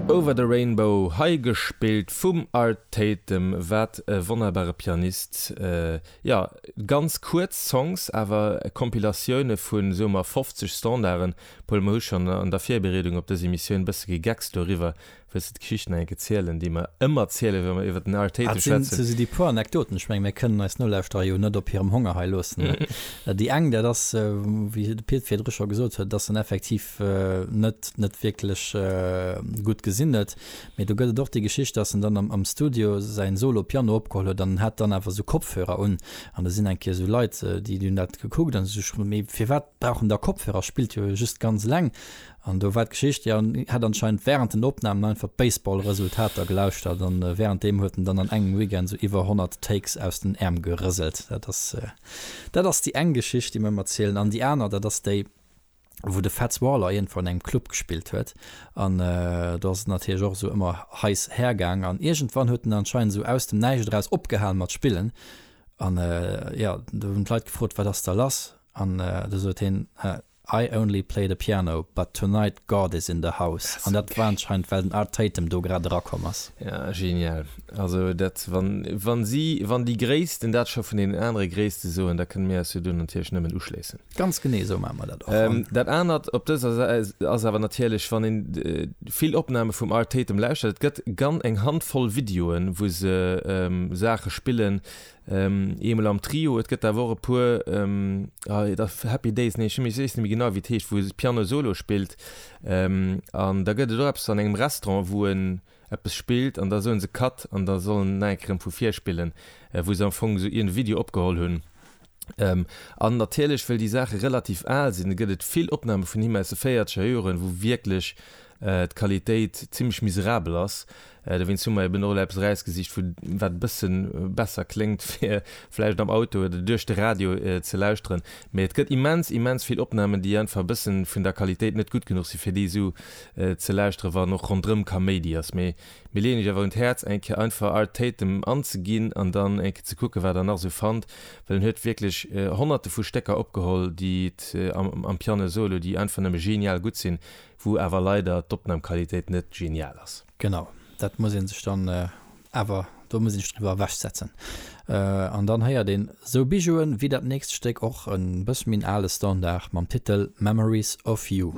Over the Rainbow, hei gespillt vum Art Tatum, wat e wonnerbare Pianist. Jo, ganz kuerz Songs, awer Compilatioune vu soe mer 50 Standarden. Paul, mer hu schonn an der Virbereedung op dës Emissioun bësse gegeckst doriwwer, Wëlls de d'Geschicht nach eng Kéier zielen, déi mer ëmmer zielen, wa mer iwwer den Arteta schwätzen? Dat sinn esou déi puer Anekdoten. Ech mengen, mir kënnen eis Nolauschterer jo net op hirem Honger hei loossen. Déi eng, dat ass, wéi de Pit virdru scho gesot huet, dass en effektiv net, net wierklech gutt gesinnet. Mee do gëtt et och déi Geschicht, dass en dann am Studio säin Solo Piano opgeholl huet an en hat dann awer esou Kopfhörer un. An da sinn eng Kéier esou Leit, déi hunn dat gekuckt an hu sech gefrot, mee firwat brauch en da Kopfhörer, spillt jo just ganz eleng. An do war d'Geschicht, jo, en hätt anscheinend wärend den Opnamen einfach d'Baseball-Resultater gelauschtert an wärend deem huet en dann an engem Weekend sou iwwer 100 Takes aus den Äerm gerëselt. Dat ass, dat ass déi eng Geschicht, déi mer ëmmer zielen. An déi aner, dat ass déi, wou de Fats Waller iergendwou an engem Club gespillt huet an do ass et natierlech och esou ëmmer heiss hergaang an iergendwann huet en anscheinend esou aus dem Näischt eraus opgehal mat spillen an, jo, do hunn d'Leit gefrot, Wat ass da lass? An do sot heen, I only play the piano, but tonight God is in the house, an dat war anscheinend well den Art Tatum do grad era komm ass. Ja genial, also dat wann wann si wann déi Gréissten dat scho vun deenen anere Gréisste soen, da kënne mir eis jo do natierlech nëmmen uschléissen. Ganz genee esou maache mer dat och, an. Dat anert op dëser Säit ass awer natierlech wann een vill Opname vum Art Tatum lauschtert, et gëtt gan eng Handvoll Videoen wou se Saache spillen, Eemol am Trio, et gëtt awer och e puer, et ass Happy Days, nee ech weess net méi genau wéi et heescht, wou e Piano Solo spillt. An da gëtt et och eppes an engem Restaurant, wou en eppes spillt an da soe se Cut an da soll en nach eng Kéier erëm vu vir spillen, wou se am Fong esou iergendee Video opgeholl hunn. An natierlech, well déi Saache relativ al sinn, gëtt et vill Opname vun him aus de véierzeger Joren, wou wierklech d'Qualitéit zimmlech miserabel ass. Dowéinst hu mer eben och elo eppes erausgesicht, vu wat e bësse besser kléngt, fir vläicht am Auto oder duerch de Radio ze lauschteren. Mee et gëtt immens, immens vill Opnamen, déi einfach e bësse vun der Qualitéit net gutt genuch sinn, fir déi esou ze lauschteren, wann och ronderëm Kaméidi ass. Mee mir leeën Iech awer un d'Häerz, eng Kéier einfach Art Tatum anzeginn an dann eng Kéier ze kucken, wat Der nach esou fannt, well en huet wierklech Honnerte vu Stécker opgeholl, déi et am Piano solo, déi einfach nëmme genial gutt sinn. Wou awer leider d'Opnamqualitéit net genial ass. Genau, dat muss een sech dann awer, do muss een sech driwwer ewech setzen. An dann héiert een sou Bijouen wéi dat nächst Stéck, och e bësse méi en ale Standard, mam Titel Memories of You.